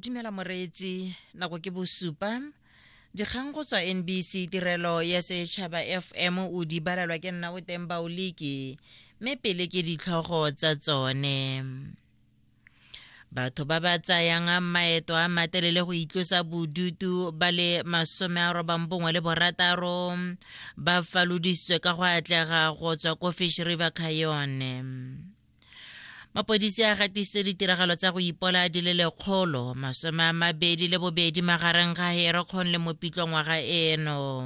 dumela moreetsi nako ke bosupa dikgang go tswa nbc tirelo ya setšhaba fm o di balelwa ke nna o teng baoliki mme pele ke ditlhogo tsa tsone batho ba ba tsayang maeto a matelele go itlosa bodutu ba le masome a robang bongwe le borataro ba falodisitswe ka go atlega go tswa ko fish river cayone mapodisi a gatisitse ditiragalo tsa go ipola di le lekgolo masome a mabedi le bobedi magareng ga herekgon le mopitlo ngwaga eno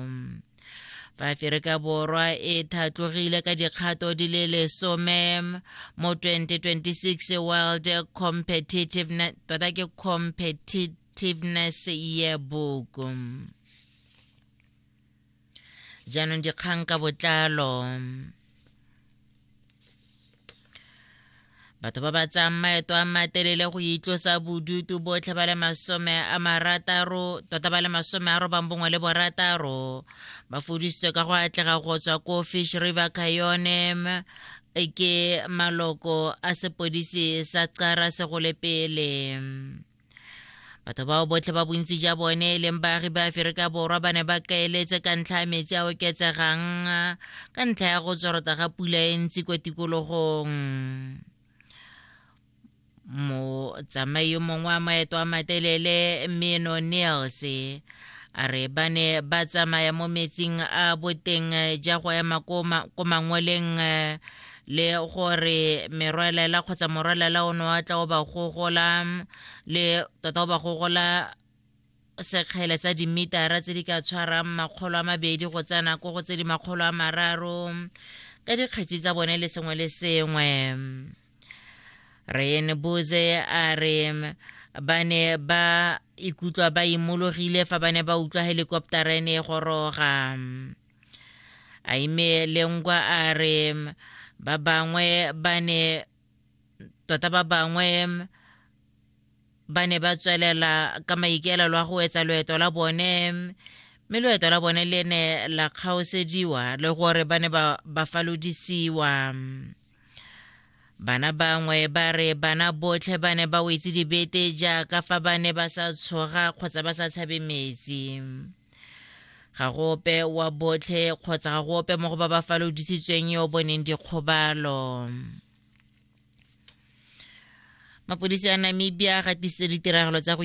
fa aferika borwa e thatlogile ka dikgato di le lesome mo 2026 world competitiveness tota ke competitiveness yearbook jaanong dikgang ka botlalo batho ba ba tsayang maeto a matelele go itlosa bodutu botlhe ba le masome a marataro tota ba le masome a robang bongwe le borataro ba fodisitswe ka go atlega go tswa ko fish river cayonem ke maloko a sepodisi sa qara segole pele batho bao botlhe ba bontsi ja bone e leng baagi ba aferika borwa ba ne ba kaeletse ka ntlha ya metsi a oketsegang ka ntlha ya go tsorota ga pula e ntsi kwa tikologong motsamai yo mongwe wa maeto a matelele meno niels a re ba ne ba tsamaya mo metsing a boteng ja go ema ko mangweleng le gore merwalela kgotsa morwalela o ne wa tla o ba gogola le tota o ba gogola sekgele sa dimitara tse di ka tshwarang makgolo a mabedi go tsaya nako go tse di makgolo a mararo ka dikgetsi tsa bone le sengwe le sengwe rene boze a re ba ne ba ikutlwa ba imologile fa ba ne ba utlwa helikoptara e ne e goroga Aime Lengwa a re ba bangwe ba ne tota ba bangwe ba ne ba tswelela ka maikaelelo a go etsa loeto la bone mme loeto la bone le ne la kgaosediwa le gore ba ne ba falodisiwa Bana bangwe ba re bana botlhe ba ne ba wetse dibete jaaka fa ba ne ba sa tshoga kgotsa ba sa tshabe metsi. Ga go ope wa botlhe kgotsa ga go ope mo go ba ba falodisitsweng yo o boneng dikgobalo. Mapodisi a Namibia a gatisitse ditiragalo tsa go